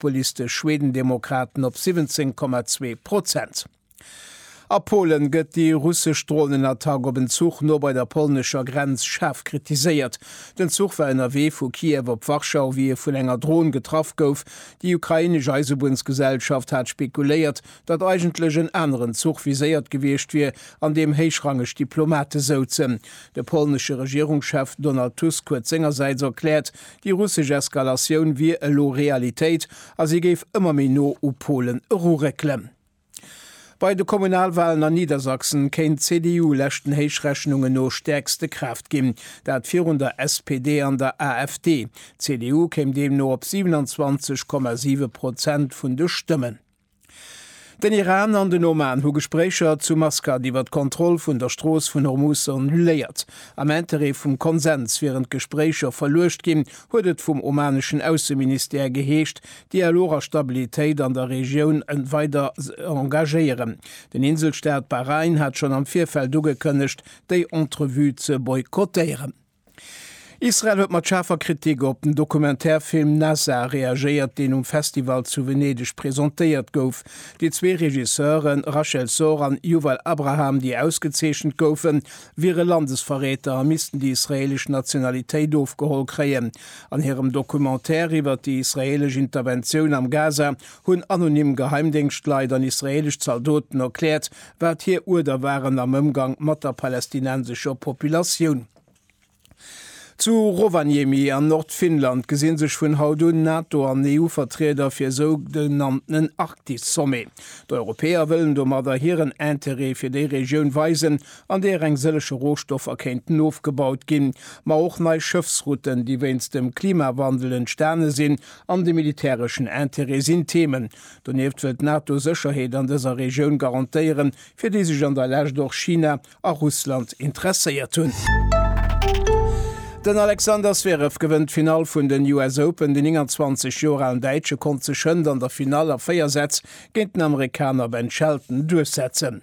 D'Police de Schwedendemokraten op 17,2 Prozent. A Polen gëtt déi russesch Dronenattack op en Zuch no bei der polnescher Grenz schaarf kritiséiert. Den Zuch war ënnerwee vu Kiew op Warschau, wéi e vun enger Dron getraff gouf. Déi ukrainesch Eisebunnsgesellschaft hat spekuléiert, datt eigentlech en aneren Zuch viséiert gewiescht wier, an deem héichrangeg Diplomate souzen. De polnesche Regierungschef Donald Tusk huet sengersäits erkläert, Déi russesch Eskalatioun wier elo Realitéit a si géif ëmmer méi no u Polen eruréckelen. Bei de Kommunalwalen a Niedersachsen kéint d'CDU leschten Héichrechnungen no stäerkste Kraaft ginn, dat virun der SPD an der AfD. D'CDU kéim deemno op 27,7 Prozent vun de Stëmmen. Den Iran an den Oman hu Gespréicher zu Maskat iwwer d'Kontroll vun der Strooss vun Hormuz annuléiert. Am Interêt vum Konsens wieren d'Gespréicher verluecht ginn, huet et vum omaneschen Ausseministère geheescht. Dialog a Stabilitéit an der Regioun weider engagéieren. Den Inselstaat Bahrain hat schonn am Virfeld ugekënnegt, déi Entrevue ze boykottéieren. Israel huet mat schaarfer Kritik op den Documentaire-Film Nazar reagéiert, deen um Festival zu Venedeg presentéiert gouf. Déi zwee Regisseuren, Rachel Sor an Yuval Abraham, déi ausgezeechent goufen, wiere Landesverräter a missten déi israeelesch Nationalitéit ofgeholl kréien. An hirem Documentaire iwwert déi israeelesch Interventioun am Gaza hunn anonym Geheimdéngschtleit an israeelesch Zaldoten erkläert, wat hir Uerder waren am Ëmgang mat der palästinensescher Populatioun. Zu Rovaniemi an Nordfinnland gesi sech vun haut un Nato an EU-Vertrieder fir e sougenanntenen Arktis-Sommet. D'Europäer wëllen domadder hiren Interêt fir déi Regioun weisen, an deeër eng sëllege Rohstoffer kéinten ofgebaut ginn, ma och nei Schëffsrouten, déi wéinst dem Klimawandel entstane sinn, an de militäreschen Interêt sinn Themen, Donieft wëll d'NATO Sécherheet an dëser Regioun garantéieren, fir déi sech an der Lescht och China a Russland interesséiert hunn. Den Alexander Zverev gewënnt d'Finall vun den US Open. Den 29 Joer alen Däitsche konnt sech hënt an der Finall a 4 Sätz géint den Amerikaner Ben Shelton duerchsetzen.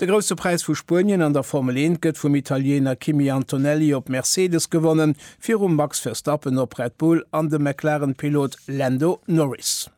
De Grousse Präis vu Spuenien an der Formel 1 gëtt vum Italiener Kimi Antonelli op Mercedes gewonnen, virum Max Verstappen op Red Bull an dem McLaren-Pilot Lando Norris.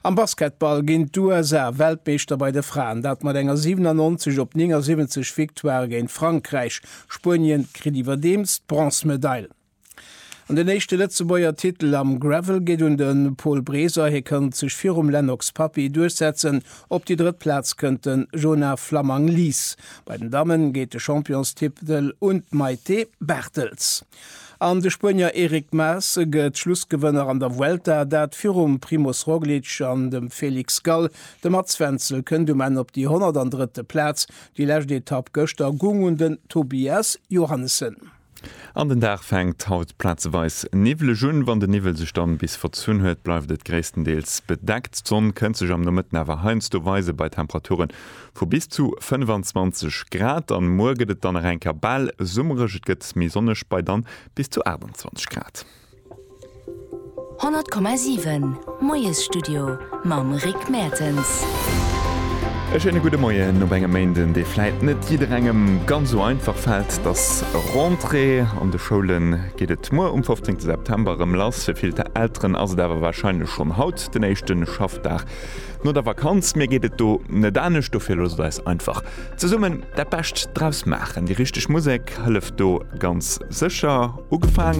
Am Basketball ginn d'USA Weltmeeschter bei de Fraen, dat mat enger 97 op 79 Victoire géint Frankräich. Spuenien kritt iwwerdeems d'Bronzmedail. An den éischte Lëtzebuerger Titel am Gravel geet un de Paul Breser. Hie konnt sech virum Lennox Papy duerchsetzen. Op déi drëtt Plaz kënnt de Jonah Flammang Lies. Bei den Damme geet de Championstitel un d'Maïté Barthels. An de Spuenier Eric Mas gëtt Schlussgewënner an der Vuelta, dat virum Primoz Roglic an dem Felix Gall. De Mats Wenzel kënnt um Enn op déi 103. Plaz. Déi lescht Etapp gëschter goung un den Tobias Johannessen. An den Dag fänkt haut plazeweis niwweleg un. Wann de Niwwel sech dann bis verzunn huet, bleift et gréisstendeels bedeckt. D'Sonn kënnt sech am Nomëtten awer heiansdo weisen, bei Temperature vu bis zu 25 Grad. An muer gëtt et dann nach eng Kéier bal summereg, et gëtt méi sonneg, bei dann bis zu 28 Grad. 100,7 Moiesstudio mam Rick Mertens. E schéine gudde Moien op engem Méinden, dee vläit net jidderengem ganz esou einfach fält. Et ass Rentrée, an de Schoule geet et muer um 15 September erëm lass. Fir vill Elteren ass et awer warscheinlech schonn haut den éischte Schaffdag no der Vakanz. Mir geet et do net anescht, dofir loosst eis einfach zesummen dat Bescht draus maachen. Déi richteg Musek hëlleft do ganz sécher. Ugefaangen.